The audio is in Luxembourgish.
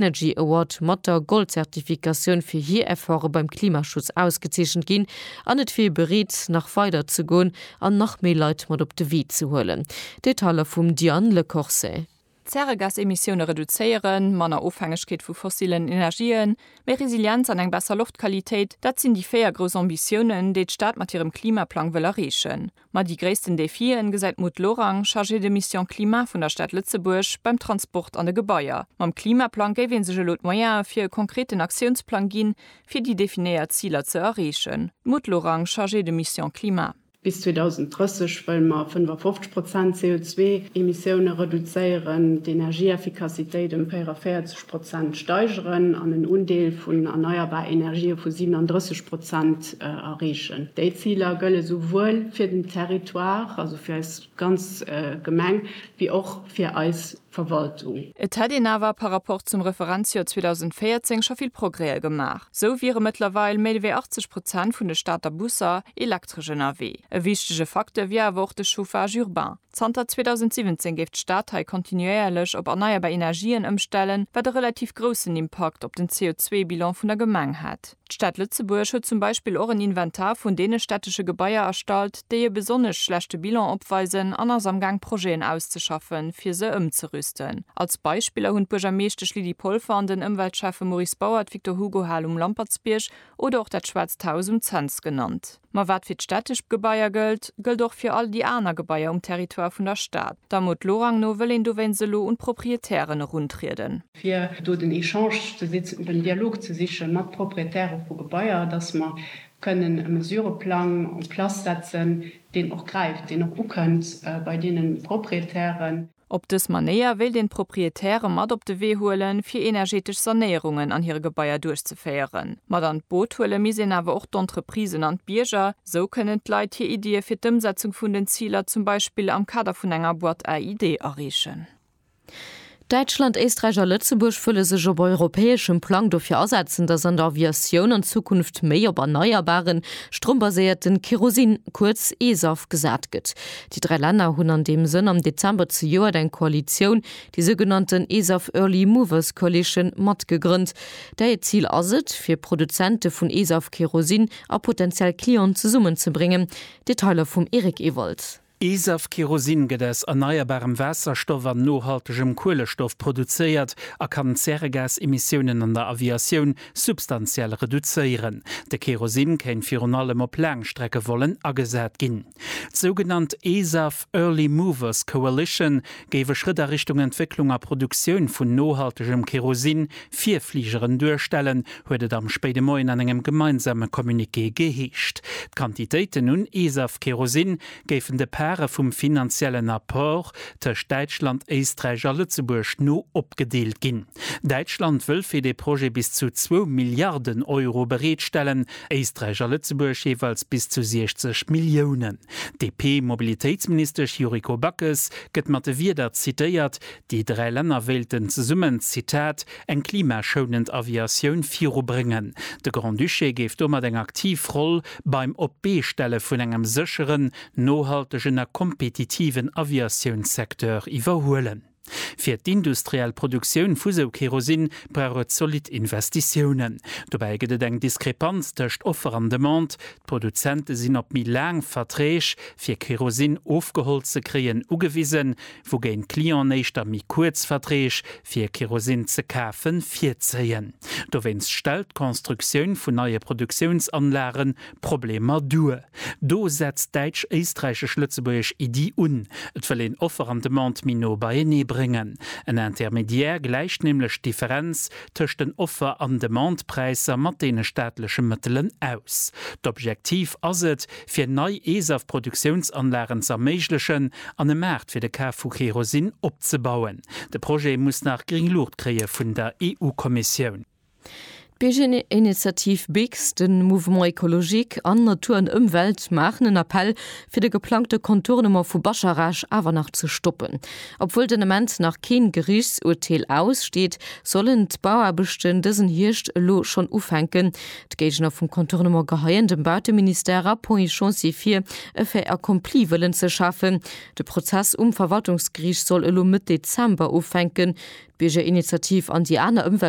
Energy Award mat der Gold-Zertifikatioun fir hir Efforte beim Klimaschutz ausgezeechent ginn an et wier bereet, nach weider ze goen an nach méi Leit mat op de Wee ze huelen. Detailer vum Diane Lecorse. Zäregasemissioune reduzéieren, manner Ofhängegkeet vu fossillen Energien, méi Resilienz an eng besser Loftqualitéit, dat sinn déi véier grouss Ambitiounen, déi d'Stad mat hirem Klimaplang wëll erreechen. Ma déi gréissten Defien gesäit d'Maud Lorang, Chargée de mission climat vun der Stad Lëtzebuerg, beim Transport an de Gebaier. Mam Klimaplang géif ee sech elo d'Moyene fir e konkreten Aktiounsplang ginn, fir déi definéiert Ziler ze erreechen. D'Maud Lorang, Chargée de mission climat. Bis 2030 wëlle mer 55 Prozent CO2-Emissioune reduzéieren, d'Energieeffikassitéit ëm 44 Prozent steigeren an en Undeel vun erneierbar Energië vu 37 Prozent erreechen. Déi Ziler gëlle souwuel fir den Territoire, also fir eis ganz Gemeng, wéi och fir eis Verwaltung. Et hätt een awer par rapport zum Referenzjoer 2014 scho vill Progrèë gemaach. Sou wiere mëttlerweil méi wéi 80 Prozent vun de Stater Busser elektresch ënnerwee. E wichtege Facteur wier awer och de Chauffage urbain. Zanter 2017 géif d'Stad hei kontinuéierlech op erneierbar Energien ëmstellen, wat e relativ groussen Impakt op den CO2-Bilan vun der Gemeng hätt. D'Stad Lëtzebuerg huet zum Beispill och en Inventar vun deene städtesche Gebaier erstallt, déi e besonnesch schlechte Bilan opweisen an ass amgaang Projeten auszeschaffen, fir se ëmzerüsten. Als Beispiller hunn d'Buergermeeschtesch Lydie Polfer an den Ëmweltschäffe Maurice Bauer d'Victor-Hugo-Hal um Lampertsbierg oder och dat Schwaarzt Haus um Cents genannt. Ma wat fir d'städtesch Gebaier gëllt, gëllt och fir all déi aner Gebaier um Territoire vun der Stad. Der Mot Lorang no wëll een dowéinst elo un d'Proprietären eruntrieden. fir do den Echange ze sichen, den Dialog ze siche mat Proprietäre vu Gebaier, dass mer kënnen e Mesureplang en place setzen, deen och gräift, deen och ukënnt bei deene Proprietären. Op dës Manéier wéilt een d'Proprietäre mat op de Wee huelen, fir energeetesch Sanéierungen an hire Gebaier duerchzeféieren. Mat an d'Boot huele misst een awer och d'Entreprisen an d'Bierger. Sou kënnen d'Leit hir Iddie fir d'Ëmsetzung vun den Ziler zum Beispill am Kader vun enger Boîte à idées areechen. Däitschland, Éisträich a Lëtzebuerg wëlle sech op europäeschem Plang dofir asetzen, datt an der Aviatioun an Zukunft méi op erneierbaren, strombaséierten Kerosin, kuerz eSAF, gesat gëtt. Déi dräi Länner hunn an deem Sënn am Dezember zejoert eng Koalitioun, déi sougenannten ESAF Early Movers Coalition, mat gegrënnt, där hiert Zil ass et, fir Produzente vun ESAF-Kerosin a potentiell Clienten zesummen ze bréngen. Detailer vum Eric Ewald. ESAF-Kerosin gëtt aus erneierbarem Waasserstoff an nohaltegem Kuelestoff produzéiert a kann d'Zäregasemissiounen an der Aviatioun substantiell reduzéieren. De Kerosin kéint virun allem op Laangstreckevollen agesat ginn. D'sougenannt ESAF, Early Movers Coalition, géif e Schrëtt a Richtung Entwécklung a Produktioun vun nohaltegem Kerosin fir Fligeren duerstellen, huet et am spéide Moien an engem gemeinsame Communiqué geheescht. D'Quantitéiten un ESAF-Kerosin géifen de Pare vum finanziellen Apport tëscht Däitschland, Éisträich a Lëtzebuerg no opgedeelt ginn. Däitschland wëll fir dee Projet bis zu zwou Milliarden Euro bereetstellen. Éisträich a Lëtzebuerg jeeweils bis zu 60 Milliounen. D'DP-Mobilitéitsministesch Yuriko Backes gëtt mat de Wierder zitéiert, déi dräi Länner wéilten zesummen, Zitat, eng klimaschounend Aviatioun virubréngen. De Grand-Duché géif domat eng aktiv Roll beim op d'Bee stelle vun engem sécheren, nohaltegen a kompetitiven Aviatiounssecteur iwwerhuelen. Fir d'industriell Produktioun vu sou Kerosin brauch et zolidd Investitiounen. Dobäi gëtt et eng Diskrepanz tëscht Offer an Demande, d'Produzente sinn op méi laang Verträg, fir Kerosin ofgeholl ze kréien, ugewisen, wougéint d'Clienten éischter méi kuerz Verträg, fir Kerosin ze kafen, virzéien. Dowéinst stellt d'Constructioun vun neie Produktiounsanlagen Problemer duer. Do setzt d'däitsch-éisträichesch-lëtzebuergesch Iddi un, et wëll een Offer an Demande méi no beienee bréngen. En Intermédiaire gläicht nämlech d'Differenz tëscht den Offer an Demandepräisser mat deene staatleche Mëttelen aus. D'Objektiv ass et, fir nei ESAF-Produktiounsanlagen z'erméiglechen an e Maart fir de Kaf vu Kerosin opzebauen. De Projet muss nach gréng Luucht kréie vun der EU-Kommissioun. D'Biergerinitiativ BIGS, de Mouvement Ecologique an Natur an Ëmwelt maachen en Appell, fir de geplangte Contournement vu Bascharage awer nach ze stoppen. Obwuel den Ament nach keen Geriichtsurteel aussteet, sollen d'Bauaarbechten dësen Hierscht elo schonn ufänken. D'Géigner vum Contournement geheien dem Bauteministère a Point Chancy vir, e Fait accompli wëllen ze schafen. De Prozess um Verwaltungsgeriicht soll elo Mëtt Dezember ufänken. D'Biergerinitiativ an déi aner Ëmwelt.